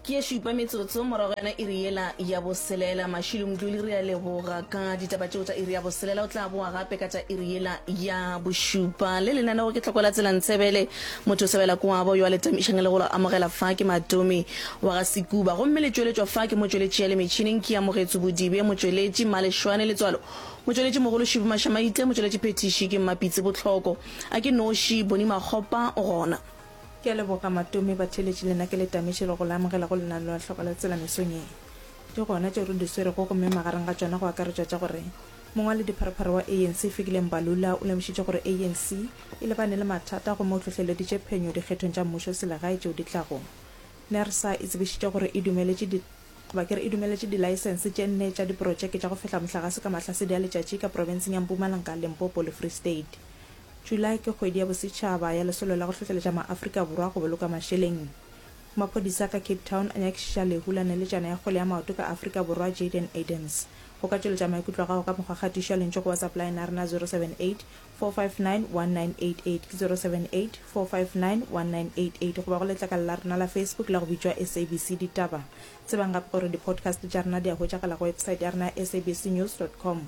ke ye šupa metsotso morago yana iri yela ya boselela mašilo moduli re a leboga ka ditaba tšeo tsa iri ya boselela o tla boa gape ka tša iri yela ya bošupa le lenanego ke tlhokwela tsela ntshebele motho o sebela koabo yo a letamišang le go amogela fa ke matomi wa ga sekuba gomme le tšweletšwa fa ke motšweletši ya le metšhineng ke amogetso bodibe motšweletši malešwane letswalo motšweletši mogolo šibo mašamaitle motšweletši phethiši ke mmapitse botlhoko a ke noši boni makgopa o gona Ke a leboga Matome Batheeletši lena ke le tametše le go le amogela go lenaneo la Hloka Letsela mesong ye. Ke gona tšeo re di swerego gomme magareng ga tšona go akaretšwa tša gore mongwali dipharopharo wa ANC Fikile Mbalula o lemošitše gore ANC e lebane le mathata gomme o hlohleleditše phenyo dikgethong tša mmušo selegae tšeo di tlago. Nersa e tsebišitše gore e dumeletše di goba ke re e dumeletše dilaesense tše nne tša diprotšeke tša go fehla mohlagase ka mahlasedi a letšatši ka profenseng ya Mpumalanga, Limpopo le Free State. Julae ke kgwedi ya bosetšhaba ya Lesolo la go Hlohleletša MaAfrika Borwa go Boloka Mašeleng. Maphodisa ka Cape Town a nyakišiša lehu la neletšana ya kgole ya maoto ka Afrika Borwa Jayden Adams. Go ka tšweletša maikutlo a gago ka mokgwa kgatišo ya lentšu go WhatsApp line ya rena 0784591988, 0784591988 goba go letlakala la rena la Facebook la go bitšwa SABC Ditaba. Tsebang gape gore di-podcast tša rena di a hwetšagala go website ya rena ya sabcnews dot com.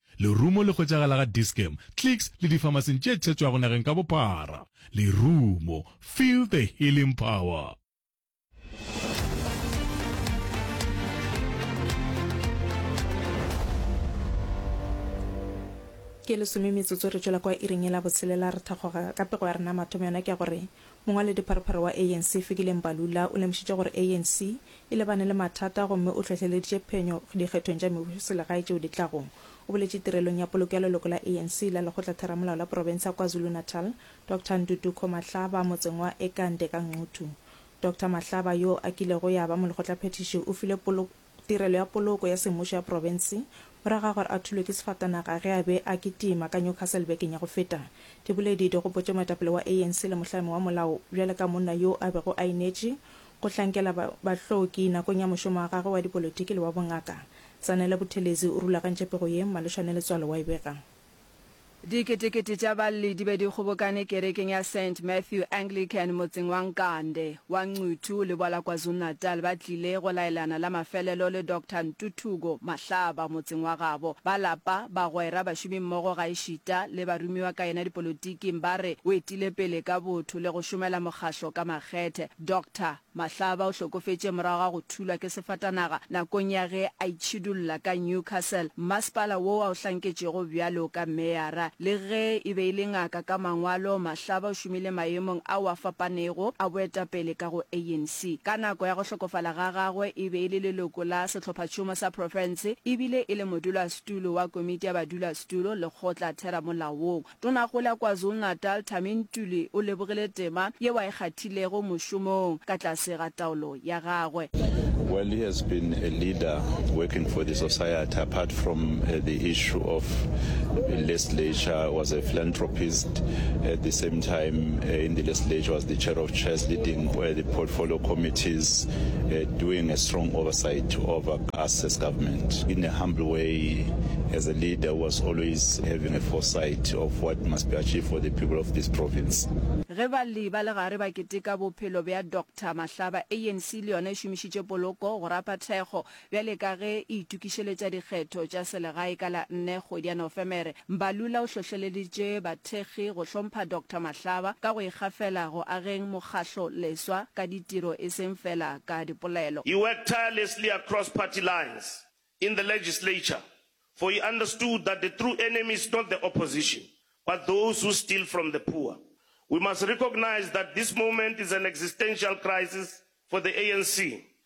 Lerumo le hwetšagala ga Dis-Chem, Clicks le difamasing tše thetšwago nageng ka bophara. Lerumo, feel the healing power. Ke lesome metsotso re tšwela kwa iring ye la botshelela re thakgoga. Ka pego ya rena mathomo yona ke ya gore mongwaledi-pharopharo wa ANC Fikile Mbalula o lemošitše gore ANC e lebane le mathata gomme o tlhohleleditše phenyo dikgethong tša mebusoselegae tšeo di tlago. O boletše tirelong ya poloko ya leloko la ANC la lekgotlatheramolao la profense ya KwaZulu-Natal, Doctor Nduduko Mahlaba motseng wa Ekande ka Ngquthu. Doctor Mahlaba yo a kilego ya ba molekgotlaphethiši o filwe poloko tirelo ya poloko ya semmušo ya profense morago ga gore a thulwe ke sefatanaga ge a be a kitima ka Newcastle bekeng ya go feta. Diboledi di gopotše moetapele wa ANC le mohlami wa molao bjale ka monna yo a bego a inetše Go hlankela ba bahloki nakong ya mošomo wa gagwe wa dipolotiki le wa bongaka, Zanele Buthelezi o rulagantše pego ye Mmalešwane Letswalo wa e bega. Diketekete tša balli di be di kgobokane kerekeng ya Saint Matthew Anglican motseng wa Nkande, wa Nquthu, leboa la KwaZulu-Natal ba tlile go laelana la mafelelo le Doctor Ntuthuko Mahlaba motseng wa gabo. Ba lapa, bagwera, bašomimmogo gaešita le barumiwa ka yena dipolotiking ba re o etile pele ka botho le go šomela mokgahlo ka makgethe. Doctor Mahlaba o hlokofetše morago ga go thulwa ke sefatanaga nakong ya ge a itšhidulla ka Newcastle, mmasepala woo a o hlanketšego bjalo ka meyara. Le ge e be e le ngaka ka mangwalo, Mahlaba o šomile maemong ao a fapanego a boetapele ka go ANC. Ka nako ya go hlokofala ga gagwe e be e le leloko la sehlophatšhomo sa profense e bile e le modulasetulo wa komiti ya badulasetulo lekgotla-theramolaong. Tonakgolo ya KwaZulu-Natal Tami Ntuli o lebogile tema yeo a e kgathilego mošomong ka tlase ga taolo ya gagwe. Well, he has been a leader working for the society apart from uh, the issue of legislature, was a philanthropist at the same time uh, in the legislature, was the chair of chairs, leading uh, the portfolio committees, uh, doing a strong oversight over Us as government, in a humble way, as a leader who was always having a foresight of what must be achieved for the people of this province. Ge balli ba legare ba keteka bophelo bja Doctor Mahlaba, ANC le yona e šomišitše poloko go rapa thekgo bjale ka ge e itokišeletša dikgetho tša selegae ka la nne kgwedi ya Nofemere. Mbalula o hlohleleditše bathekgi go hlompha Doctor Mahlaba ka go ikgafela go ageng mokgahlo leswa ka ditiro e seng fela ka dipolelo. He worked tirelessly across party lines in the legislature for he understood that the true enemy is not the opposition but those who steal from the poor. We must recognise that this moment is an existential crisis for the ANC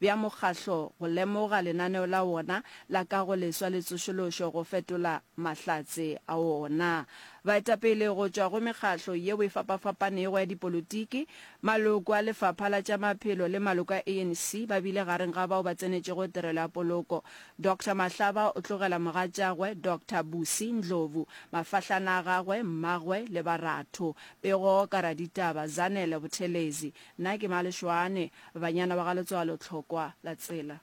bja mokgahlo go lemoga lenaneo la wona la kagoleswa le tsošološo go fetola mahlatse a wona. Baetapele go tšwa go mekgahlo yeo e fapafapanego ya dipolotiki, maloko a Lefapha la tša Maphelo le maloko a ANC ba bile gareng ga bao ba tsenetšego tirelo ya poloko. Doctor Mahlaba o tlogela mogatšagwe Doctor Busi Ndlovu, mafahlana a gagwe, mmagwe le baratho, Pego ka raditaba Zanele Buthelezi, Na ke Malešoane, banyana ba ga Letswalo Tlhokwa la tsela.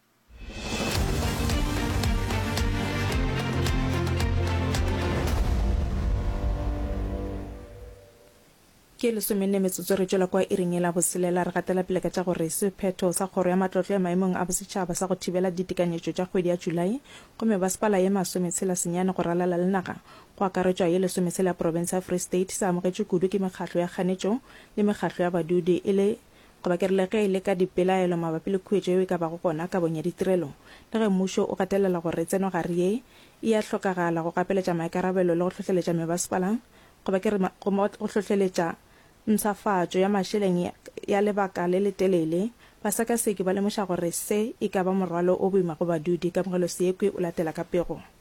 Ke lesomenne metsotso re tšwela kwa iring e la boselela re gatela pele ka tša gore sephetho sa kgoro ya matlotlo ya maemong a bosetšhaba sa go thibela ditekanyetšo tša kgwedi ya Julae go mebasepala ye masometshela senyane go ralala le naga go akaretšwa ye lesometshela ya profense ya Free State se amogetšwe kudu ke mekgatlo ya kganetšo le mekgatlo ya badudi e le goba ke re le ge e le ka dipelaelo mabapi le khuetšo yeo e ka bago gona kabong ya ditirelo. Le ge mmušo o gatelela gore tsenogare ye e a hlokagala go gapeletša maikarabelo le go hlohleletša mebasepala goba ke re go hlohleletša mpshafatšo ya mašeleng ya lebaka le letelele, basekaseki ba lemoša gore se e ka ba morwalo o boima go badudi. Kamogeloseekwi o latela ka pego.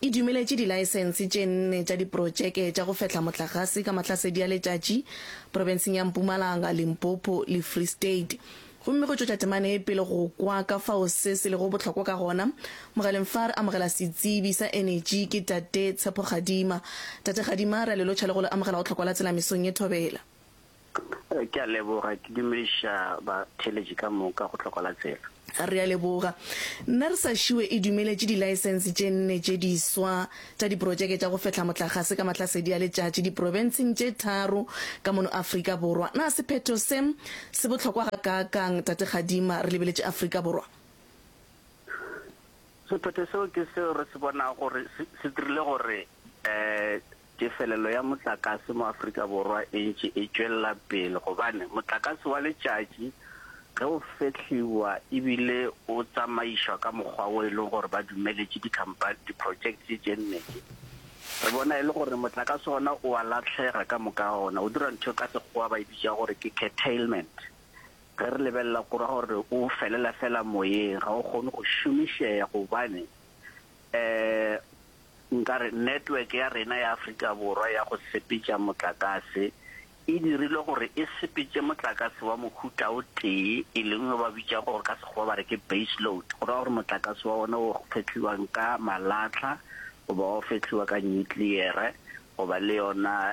e dumeletše dilaesense tše nne tša diprotšeke tša go fehla motlagase ka mahlasedi a letšatši profenseng ya Mpumalanga, Limpopo le Free State. Gomme go tšwetša temana e pele go kwa ka fao se se lego bohlokwa ka gona, mogaleng fa re amogela setsebi sa enetši ke Tate Tshepo Kgadima. Tate Kgadima, re a le lotšha le go le amogela go Tlhokwa la Tsela mesong ye thobela. Ke a leboga, ke dumediša batheeletši ka moka go tlhoko la tsela. Re a leboga. NERSA šiwe e dumeletše dilaesense tše nne tše diswa tša diprotšeke tša go fehla motlakgase ka mahlasedi a letšatši diprobenseng tše tharo ka mono Afrika Borwa. Na sephetho se se bohlokwa gakaakang, Tate Kgadima, re lebeletše Afrika Borwa? Sephetho seo ke seo re se bonago gore se dirile gore Tefelelo ya motlakase mo Afrika Borwa e ntše e tšwelela pele gobane motlakase wa letšatši ge o fehliwa e bile o tsamaišwa ka mokgwa wo e lego gore ba dumeletše dikhampani, diprotšekte tše mmedi, re bona e le gore motlakase ona o a lahlega ka moka ga ona, o dira ntho e ka Sekgowa ba e bitša gore ke curtailment. Ge re lebelela kua gore o felela feela moyeng, ga o kgone go šomišega gobane um. Nka re network ya rena ya Afrika Borwa ya go sepetša motlakase e dirilwe gore e sepetše motlakase wa mohuta o tee, e leng yo ba bitšago gore ka Sekgowa ba re ke base load, go ra gore motlakase wa ona o fetlhiwang ka malatlha goba wa go fetlhiwa ka nyutliyere goba le yona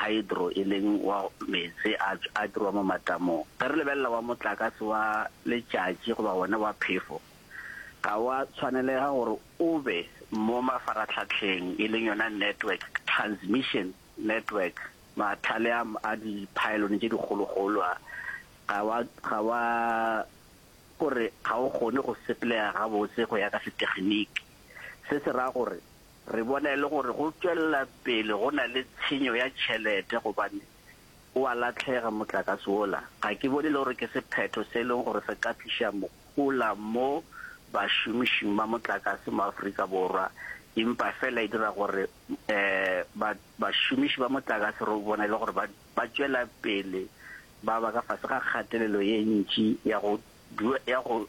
hydro e leng wa meetse a a dirwa mo matamong. Ge re lebelela wa motlakase wa letšatši goba wona wa phefo, ga wa tshwanelega gore O be mo mafaratlhatlheng, e leng yona network, transmission network, mathale a a diphaelone tše dikgologolo a. Ga wa, ga wa, ko re ga o kgone go sepelega gabotse go ya ka setegeniki. Se se ra gore re bona e le gore go tšwelela pele go na le tshenyo ya tšhelete gobane O a lahlega motlakase wola. Ga ke bone le gore ke sephetho se e leng gore se ka tliša mohola mo bašomišing ba motlakase mo Afrika Borwa, empa fela e dira gore ba bašomiši ba motlakase re bona e le gore ba tšwela pele ba ba ka fase ga kgatelelo ye ntši ya go ya go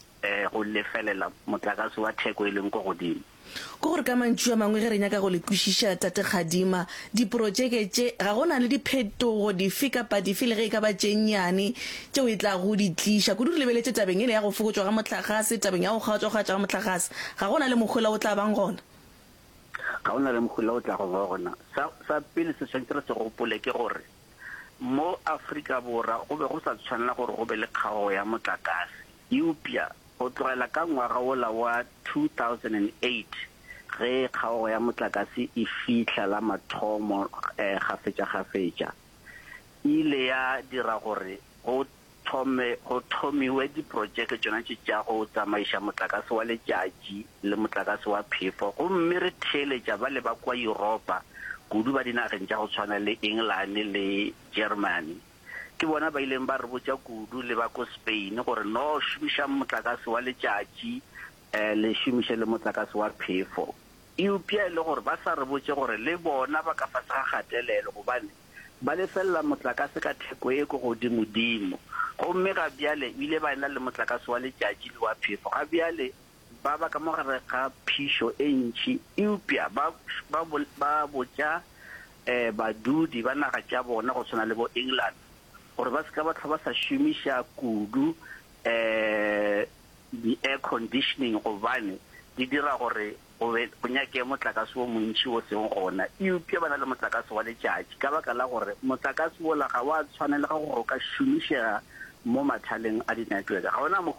go lefelela motlakase wa theko e leng ko godimo. Ke gore ka mantšu a mangwe ge re nyaka go le kwešiša, Tate Kgadima, diprotšeke tše ga go na le diphetogo dife kapa dife le ge e ka ba tše nnyane tšeo e tlago di tliša. Kudu re lebeletše tabeng yela ya go fokotšwa ga mohlagase, tabeng ya go kgaotšwakgaotšwa ga mohlagase. Ga go na le mohula o tla bang gona? Ga go na le mohula o tlago ba gona. Sa, sa pele se swanetše re se gopole ke gore mo Afrika Borwa go be go sa tshwanela gore go be le kgaogo ya motlakase. Eupša go tlogela ka ngwaga wola wa 2008 ge kgaogo ya motlakase e fihla la mathomo kgafetšakgafetša, e ile ya dira gore go thome go thomiwe diprotšeke tšona tše tša go tsamaiša motlakase wa letšatši le motlakase wa phefo gomme re theeletša bale ba kua Yuropa, kudu ba dinageng tša go tshwana le Engelane le Jeremane. Ke bona ba ileng ba re botša kudu le ba ko Spain gore no šomišang motlakase wa letšatši le šomiše le motlakase wa phefo. Eupša e le gore ba sa re botše gore le bona ba ka fase ga kgatelelo gobane ba lefelela motlakase ka theko e ko godimodimo. Gomme ga bjale o ile ba ena le motlakase wa letšatši le wa phefo. Ga bjale Ba ba ka mo gare ga phišo e ntši, eupša ba ba ba botša badudi ba naga tša bona go swana le bo England gore ba se ka ba hlwa ba sa šomiša kudu di air conditioning gobane di dira gore go be go nyakege motlakase o montši o seng gona, eupša ba na le motlakase wa letšatši ka baka la gore motlakase wola ga wa tshwanelega gore o ka šomišega mo mathaleng a di network ga ona mo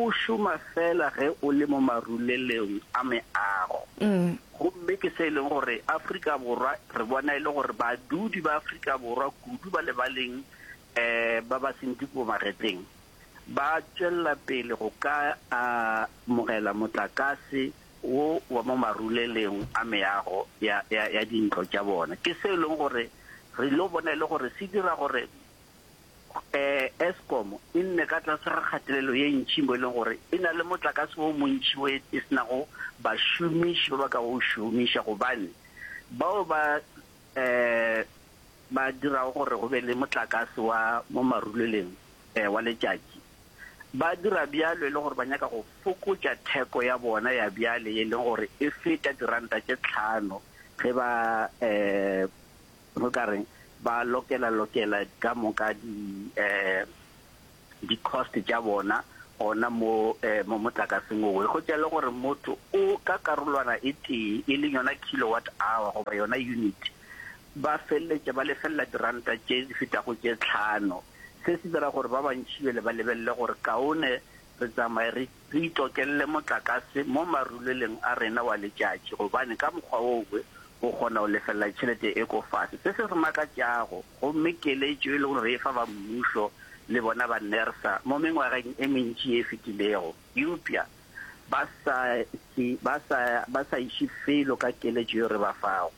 O šoma feela ge o le mo marulelong a meago. Gomme ke se e leng gore Afrika Borwa re bona e le gore badudi ba Afrika Borwa kudu ba lebaleng ba ba seng di pomagetleng ba tšwelela pele go ka amogela motlakase wo wa mo marulelong a meago ya dintlo tša bona. Ke se e leng gore re ilo bona e le gore se dira gore Eskom e nne ka tlase ga kgatelelo ye ntši mo e leng gore e na le motlakase o montši wo e se nago bašomiši ba ba ka go šomiša gobane bao ba ba dirago gore go be le motlakase wa mo maruleleng wa letšatši ba dira bjalo e le gore ba nyaka go fokotša theko ya bona ya bjale e leng gore e feta diranta tše tlhano ge ba O ka re ba lokela lokela ka moka di di cost tša bona gona mo mo motlakaseng owe go tšele gore motho o ka karolwana e tee e leng yona kilowatt hour goba yona unit ba feleletša ba lefelela diranta tše di fetago tše tlhano se se dira gore ba bantši bjele ba lebelele gore kaone re tsamaye re Re itokelle motlakase mo maruleleng a rena wa letšatši gobane ka mokgwa wo we o kgona go lefelela tšhelete e ko fase. Se se re makatšago gomme keletšo e lego re e fa ba mmušo le bona ba nersa mo mengwageng e mentši ye e fetilego eupša ba sa, ba sa, ba sa iše felo ka keletšo yeo re ba fago.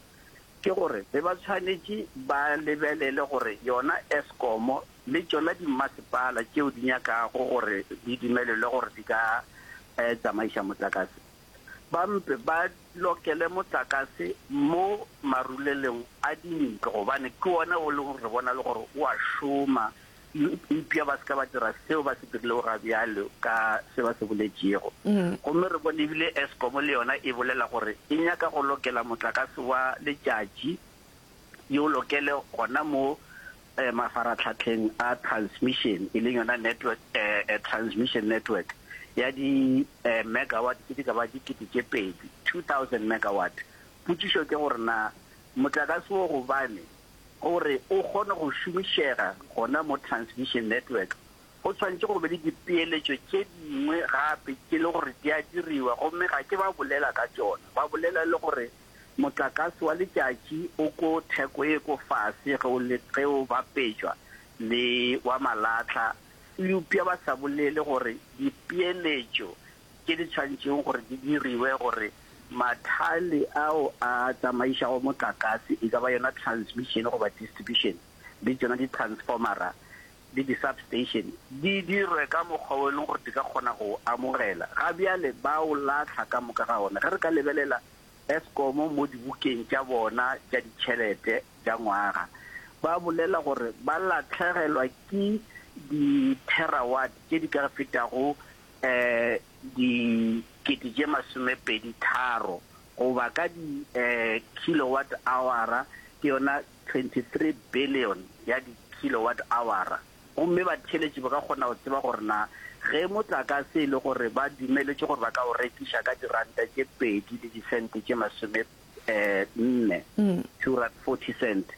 ke gore be ba tshwanetše ba lebelele gore yona Eskom le tšona dimmasepala tšeo di nyakago gore di dumelelwe gore di ka tsamaiša motlakase ba mpe ba lokele motlakase mo marulelong a dintlo gobane ke wona o leng gore re bona le gore o a šoma eupša ba se ka ba dira seo ba se dirilego ga bjalo ka se ba se boletšego. Gomme re bone ebile Eskom le yona e bolela gore e nyaka go lokela motlakase wa letšatši yo lokele gona mo mafaratlhatlheng a transmission, e leng yona network, transmission network ya di megawatt tše di ka ba dikete tše pedi, 2000 megawatt. Potšišo ke gore na motlakase wo gobane Gore o kgone go šomišega gona mo Transvision Network, go swanetše go be le dipeeletšo tše dingwe gape tše le gore di a diriwa gomme ga ke ba bolela ka tšona. Ba bolela le gore motlakase wa letšatši o ko theko e ko fase ge o le ge o bapetšwa le wa malatlha, eupša ba sa bolele gore dipeeletšo Ke di tshwantšeng gore di diriwe gore mathale ao a tsamaišago motlakase, e ka ba yona transmission goba distribution, le tšona di-transformera le di-substation, di dirwe ka mokgwa wo e leng gore di ka kgona go o amogela. Ga bjale ba o lahla ka moka ga ona. Ge re ka lebelela Eskom mo dibukeng tša bona tša ditšhelete tša ngwaga, ba bolela gore ba lahlegelwa ke di-terawatt tše di ka fetago dikete tše masomepedi tharo goba ka di kilowatt awara ke yona 23 billion ya di kilowatt awara. Gomme batheeletši ba ka kgona go tseba gore na ge motlakase e le gore ba dumeletšwe gore ba ka o rekiša ka diranta tše pedi le disente tše masome nne, two rand forty cents,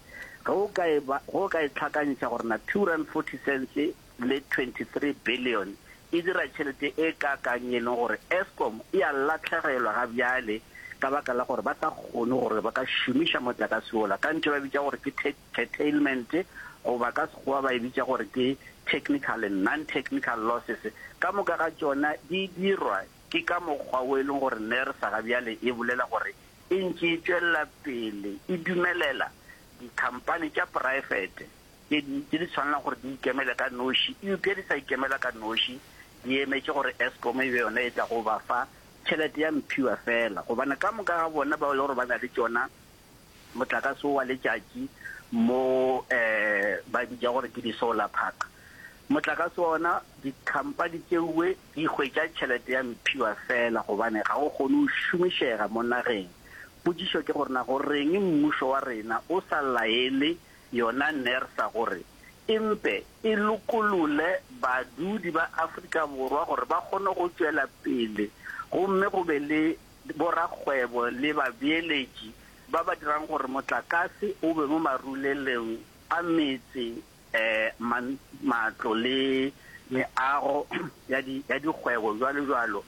ge o ka e ba ge o ka e tlhakantšha gore na two rand forty cents le 23 bilione e dira tšhelete e kaakang e leng gore Eskom e a lahlegelwa ga bjale ka baka la gore ba sa kgone gore ba ka šomiša motlakase wola. Ka ntšha ba e bitša gore ke curtailment goba ka Sekgowa ba e bitša gore ke technical and non-technical losses. Ka moka ga tšona di dirwa ke ka mokgwa wo e leng gore Nersa ga bjale e bolela gore e ntše e tšwelela pele e dumelela dikhampani tša poraefete tše dintši di tshwanela gore di ikemele ka noši, eupša di sa ikemela ka noši, di emetše gore Eskom e be yona e tlago go ba fa tšhelete ya mphiwa feela, gobane ka moka ga bona bao e lego gore ba na le tšona motlakase wo wa letšatši mo um ba bitša gore ke di-solar park, motlakase wa ona dikhamphani tšeoe di hwetša tšhelete ya mphiwa feela gobane ga o kgone go šomišega mo nageng. Potšišo ke gore na go reng mmušo wa rena o sa laele yona Nersa gore e mpe e lokolole badudi ba Afrika Borwa gore ba kgone go tšwela pele gomme go be le borakgwebo le babeeletši ba ba dirang gore motlakase o be mo marulelong a metse, matlo le meago ya dikgwebo, bjalobjalo,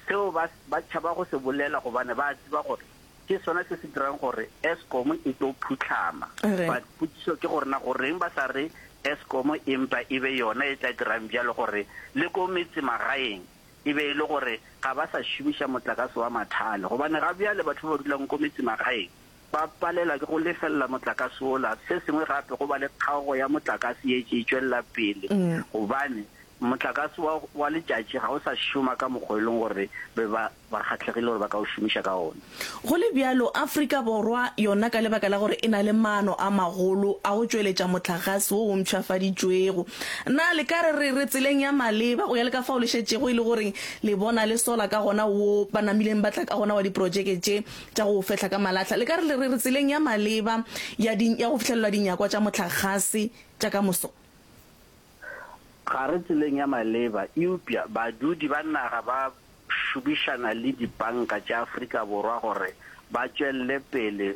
Seo ba ba tšhaba go se bolela gobane ba a tseba gore ke sona se se dirang gore Eskom e tlo phutlhama. But potšiso ke gore na goreng ba sa re Eskom e mpa e be yona e tla dirang bjalo gore le ko metsemagaeng e be e le gore ga ba sa šomiša motlakase wa mathale gobane ga bjale batho ba ba dulang ko metsemagaeng ba palelwa ke go lefelela motlakase wola. Se sengwe gape, go ba le kgaogo ya motlakase ye tše e tšwelela pele gobane motlakase wa, wa letšatši ga o sa šoma ka mokgwa e leng gore be ba, ba kgahlegile gore ba ka o šomiša ka ona. Go le bjalo, Afrika Borwa yona ka lebaka la gore e na le maano a magolo a go tšweletša motlagase wo o mpšhafaditšwego, na le ka re re, re tseleng ya maleba go ya le ka fao le šetšego e le gore le bona le sola ka gona woo ba namileng ba tla ka gona wa diprotšeke tše? tša go fehla ka malahla le ka re le re re tseleng ya maleba ya, di, ya go fihlelelwa dinyakwa tša mohlagase tša ka moso. Ga re tseleng ya maleba, eupša badudi ba naga ba šomišana le dipanka tša Afrika Borwa gore ba tšwelele pele